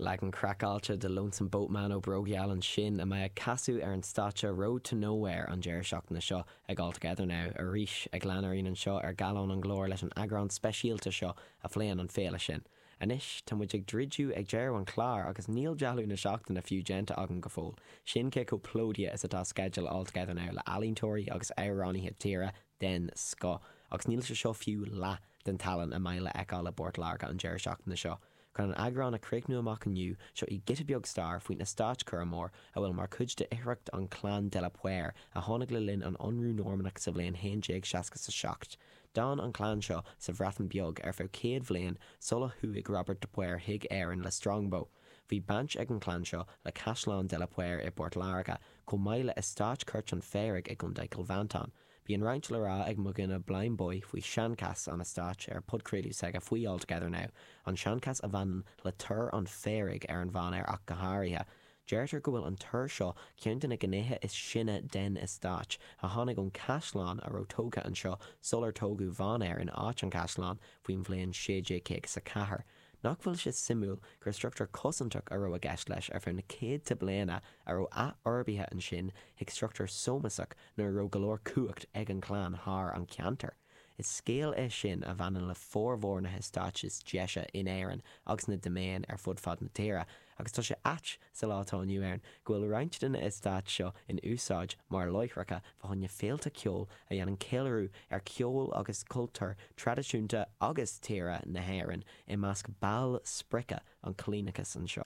Leagan craiceáilte de Lonesome Boatman ó Brògeal ansin a mbeidh ag casadh ar an stáitse Road to Nowhere an deireadh seachtaine seo ag All Together Now, arís ag lean ar aghaidh anseo ar Gallán an Ghlóir leis an eagrán speisialta seo a phléann an féile sin. Anois tá muid ag druideadh ag deireadh an chláir agus níl dealú na seachtaine fiú déanta agam go fóill, sin cé chomh plódaithe is atá sceideal All Together Now le ealaíontóirí agus amhránaithe tíre den scoth agus níl sé seo fiú leath den tallann a mbeidh le fheiceáil i bPort Láirge an deireadh seachtaine seo. Chun an eagrán a chríochnú amach inniu, seo í giota beag stair faoin Eastáit Curraghmore a bhfuil mar chuid de oidhreacht an Chlann de la Poer a tháinig le linn an ionradh Normannach sa bhliain 1160 is a seacht. D'fhan an chlann seo sa Bhreatain Bheag ar feadh céad bhliain sula chuaigh Robert de Poer chuig Éirinn le Strongbow. Bhí baint ag an chlann seo le Caisleán de la Poer i bPort Láirge, Chomh maith le Eastáit Chúirt an Phaoraigh i gContae Chill Mhantáin, bíonn roinnt le rá ag mo dhuine Blindboy faoi sheanchas an eastáit ar a podchraoladh s'aige faoi All Together Now, an seanchas a bhaineann le Tor an Phaoraigh ar an Mhainéar ach go háirithe. Deirtear go bhfuil an tor seo ceann de na gnéithe is sine den eastáit, a tháinig ón caisleán a raibh tógtha anseo sular tógadh Mhainéar in áit an chaisleáin faoin bhliain 1650 is a ceathair. Nach bhfuil sé suimiúil gur struchtúr cosantach a raibh i gceist leis ar feadh na céadta bliana a raibh athfhorbaithe ansin chuig struchtúr sómasach nuair a raibh go leor cumhacht ag an chlann thar an ceantar. Is scéal é sin a bhaineann le formhór na heastáit is deise in Éirinn agus na diméin ar fud fad na tíre. Agus tá sé ait, sa lá atá inniu ann, go bhfuil roinnt de na heastáit seo in úsáid mar láithreacha fá choinne féilte ceoil a dhéanann ceiliúradh ar cheol agus cultúr traidisiúnta agus tíre na hÉireann i measc ball sprice an coilíneachais anseo.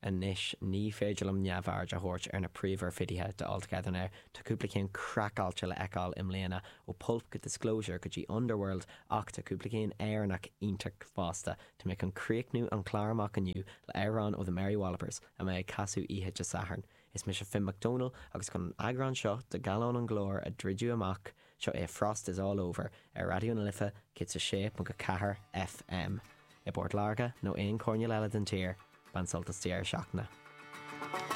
Anois, ní féidir liom neamhaird a thabhairt ar na príomhoirfidithe de All Together Now. Tá cúpla ceann craiceáilte le fheiceáil i mbliana, ó Pulp go Disclosure go dtí Underworld, ach tá cúpla ceann Éireannach iontach fosta. Tá muid chun críochnú an clár amach inniu le amhrán ó The Mary Wallopers a mbeidh ag casadh oíche Dé Sathairn. Is mise Finn McDonnell agus chun an eagrán seo de Gallán an Ghlóir a druideadh amach, seo é Frost is All Over ar Raidió na Life 106.4 FM. I bPort Láirge nó aon choirnéal eile den tír, bain sult as deireadh seachtaine.